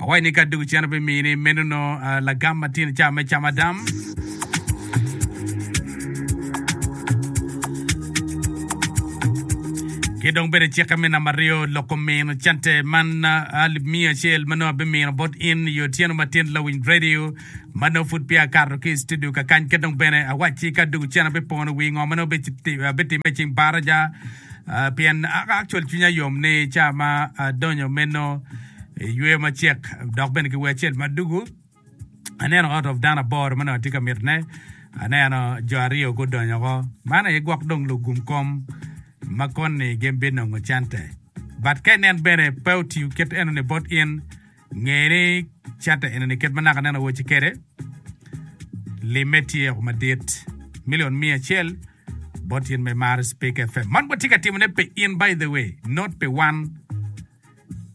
Awaci ni ka dog iceno pi mii ni meno no lagam ma tino ca me cama dam. Ki dong bene cikke me namba aryo loko mino cente man alip miya acel ma nongo abi mino bot in iyo tyeno ma tin lawiny radio ma nongo pud peya akato ki itudio ka kany ki dong bene awaci ka dog iceno abi pono wii ngo ma nongo abi time icing baraja pien actual cwinya yom ni ca ma adonyo meno Iyweyo macek dok bene ki wer acel ma dugu. Aneno ot of dano aboro ma dong atye ka mitine. Aneno jo aryo gudonyo woko. Man aye gwok dong lugum kom ma koni gin binongo cente. But ka inen bene pe otiyo kit enoni bot in, nge ni cente enoni kit ma naka nen awaci kwede, limme tye woko madit. Million miya acel bot in ma imaro Speak FM. Man watye ka timone pi in by the way, not pi wan.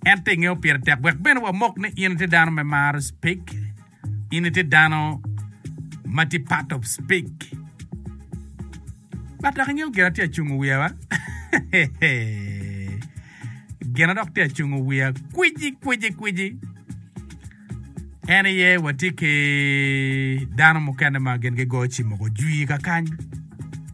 En pinge opire tek wek bene wamok ni in itye dano me maro cpik? In itye dano ma tye part of cpik? But dok ingeyo gin atye acungo wiya wa? Gina dok tye acungo wiya kwici kwici kwici en iye watye ki dano mukene ma gin gigoyo cim moko jwi kakany.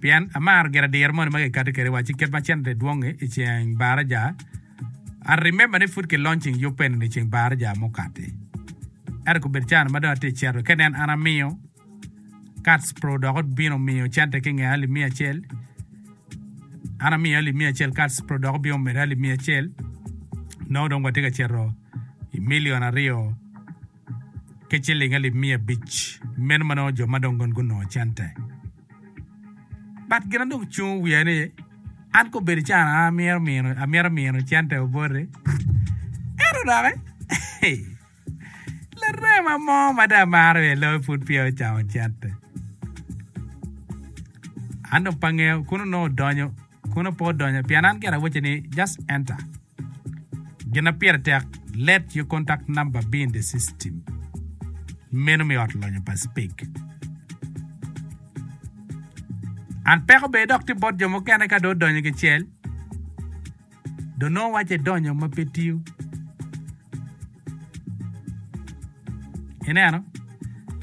Pien amaro giradira moni ma kikati kwede wa ci kit ma cente dwong-ngi i ceng Baraja. I remember ni pud kilonching yub pa enini i ceng Baraja mukati. Ento gubedo caa ma dong atye i cito ka nen an amiyo Kats Pro dok obino miyo cente ki nge alip miya acel. An amiyo alip miya acel Kats Pro dok obino medo alip miya acel. Nongo dong watye ka cito i milion aryo ki ciling alip miya abic, meno ma nongo jo ma dong gin gunongo cente. But gina dong cungo wiya ni, an ka obedo can an amyero mino, amyero mino cente oboti. Ento doki, larema mo ma dong amaro iye loyo pud peya ocamo cente. An dong pe angeyo, kono nongo odonyo, kono pe odonyo, pien an gire awacce ni just enter. Gin ma pire tek, Let your contact number be in the system menu me ot lonyo pa Speak. An peko bene dok tye bot jo mukene ka dong odonyo kicel dong nongo wacce idonyo ma pe tiyo. Ineno?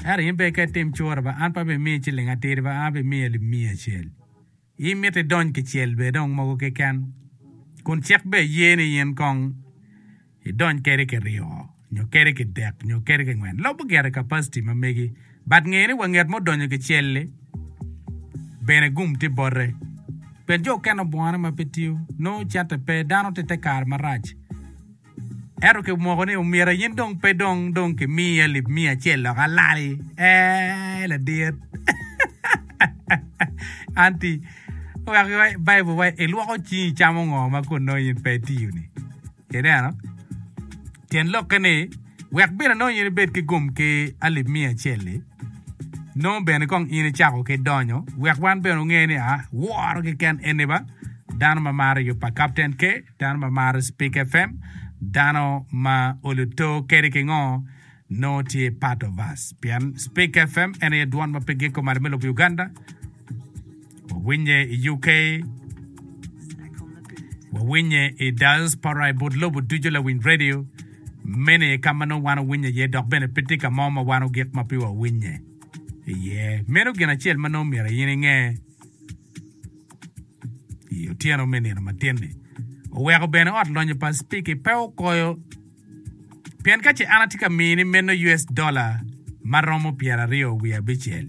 Ento in bene ka itim cura ba an pe abimiyi ciling atir ba, an abimiyi alip miya acel. In mitte idony kicel bene dong mogo keken, kun cik bene ye ni in kong idony kede kiryo nyo kede kidek nyo kede kingwen. Lobo gire capacity ma megi, but nge ni wa nget ma odonyo kicel-li bene gum tye bote. Pien jo okene obwone ma pe tiyo, nongo cente pe, dano tye i te kare marac. Ento kimoko ni omira yin dong pe dong dong ki miyi alip miya acel lok alali eeh ladit anti wek iwa i bible wa ilwoko cingi icamo ngo ma kun nongo in pe itiyo ni ineno tyen lokke ni wek bene nongo in ibed ki gum ki alip miya acel li. Nongo bene kong in icako ki donyo wek wan bene onge ni a woro keken eni ba dano ma maro yub pa Kapten K, dano ma maro Speak FM, dano ma olu to kadi ki ngo nongo tye part of us pien Speak FM en aye dwon ma pe giko malo me lobo Uganda. Wawinye i UK, wawinye i diaspora i but lobo ducu lawiny radio mene ka ma nongo wan wawinye iye dok bene pe tye ka mo ma wan ogik ma pe wawinye iye. Meno gin acel ma nongo myero in inge i otyeno me nino matin-ni. Oweko bene ot lonyo pa Speke pe okoyo pien ka ce an atye ka mini meno US dola ma romo pyeraryo wiye abicel,